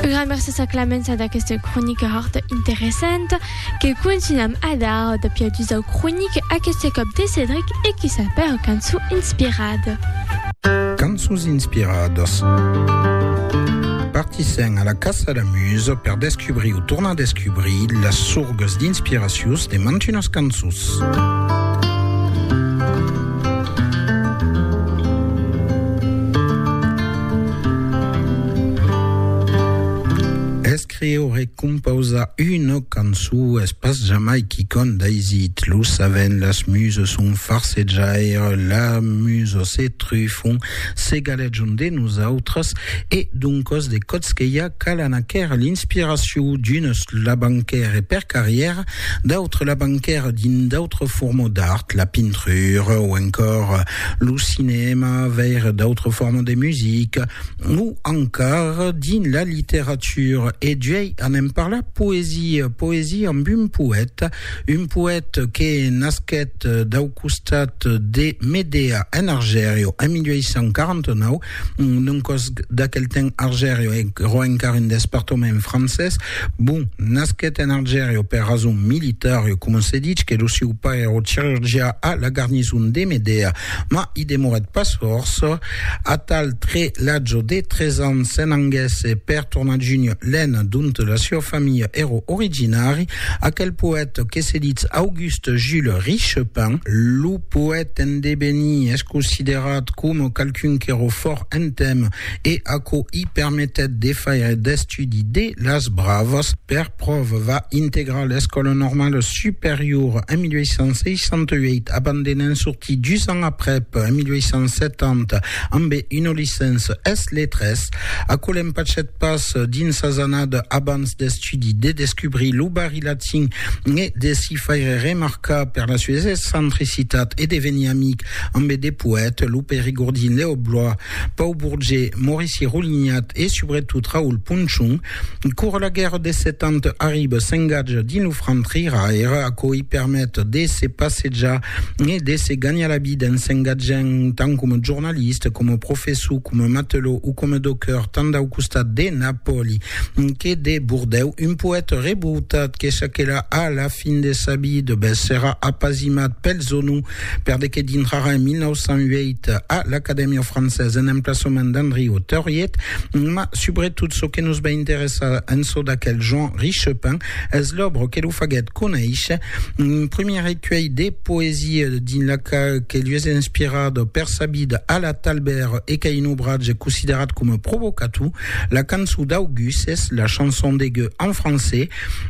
Un gran mercés a Clamença d'aquesta cronica hòrt interessanta que contunham a dar de piadus au cronic, aqueste còp de Cedric e qui sap era cançon inspirada. Cançons inspiradas. Partissèm a la caça la musa per descubrir o tornar descubrir las sorgas d'inspiracions de mantunas cançons. Escriure e compausar una cançon es pas jamai quicòm d'aisit, lo saben, las muses son farsejaire, las muses se trufon, se galejon de nosautres e doncas de còps que i a calan aquera l'inspiracion, d'unes la banquèrent per carrièra, d'autres la banquèrent dins d'autres formas d'art, la pintura o encòr lo cinèma vers d'autres formes de musica o encara dins la literatura e juei anem parlar poesia poesia amb un poèta un poèta que nasquèt dau costat de Medea en Argèrio en 1849 non còs d'aquel temps Argerio e ro encara un despartament francés, bon, nasquet en Argerio per rason militar e coma se dich que lo sieu pair ro cirurgià a la garnison de Medea, ma i demorèt pas fòrça, atal tre l'atge de tres ans se n'anguèsse per tornar junh l'Aisne dont la sieu familha ero originari, aquel poète que se ditz Auguste, Auguste Jules Richepin, lo poète endevenir, es considerat coma qualqu'un qu'èra fòrt en temps e aquò i permetèt de faire d'estudi de las bravas. Per pròva, va integrar l'Escòla Normala Superiora en 1868, abandonant sortir dus ans aprèp, en 1870, ambe una licença es letras. Aquò l'empachèt pas dins sas annadas abans d'estudi. l'estudi de descubrir lo barri latin e de s'i faire remarcar per la sues excentricitat e de venir amic ambe de poètes, lo perigordin Lèo Blois, Pau Bourget, Maurici Roulignat e subretot Raoul Ponchon. Cor la guèrra de set ans arriba, s'engatja dins lo franc triraire, aquò i permet de se passejar e de se ganhar la vida en s'engatjant tant coma jornalista, coma professor, coma matelot o coma docker tant dau costat de Napòli que de Bordèu, un poète revoltat que saquèra a la fin de sa vida, bèth serà apasimat pel Zonou per de que dintrarà en 1908 a l'Acadèmia Française en emplaçament d'Andriu Tauriet, mas subretot çò que nos va interessar en çò d'aquel Jean Richepin es l'òbra que lo faguèt conéisher, un primièr recuelh de poesia dins la qual que li es inspirat per sa vida a la Talbèr e qu'a un obratge considerat coma provocator. La cançon d'August es la chanson de Gueux en francés,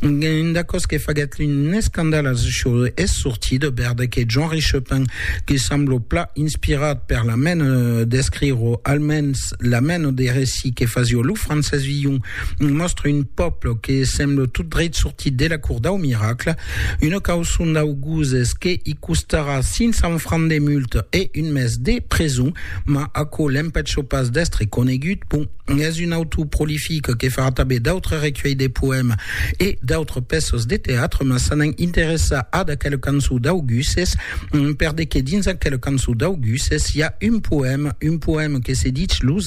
un d'acòs que faguèt un escandal a çò es sortit bèrdre que Jean Richepin, que semblo pla inspirat per la mena d'escriro, almens la mena de recit que fasió lo Francés Villon, mòstre un pòble que semblo tot dreit sortit de la cour dau miracle. Una cauçon d'August es que i costarà 500 francs de multa e un mes de preson. Ma aquò l'empècho pas d'èstre conegut, bon, es un autor prolific que farà tanben d'autres recuelhs de poèmes e d'autres pèças de teatre, mas s'anant interessar ad aquela cançon d'Auguses, per de que dins aquela cançon d'Auguses i a un poème, un poème que se ditz Los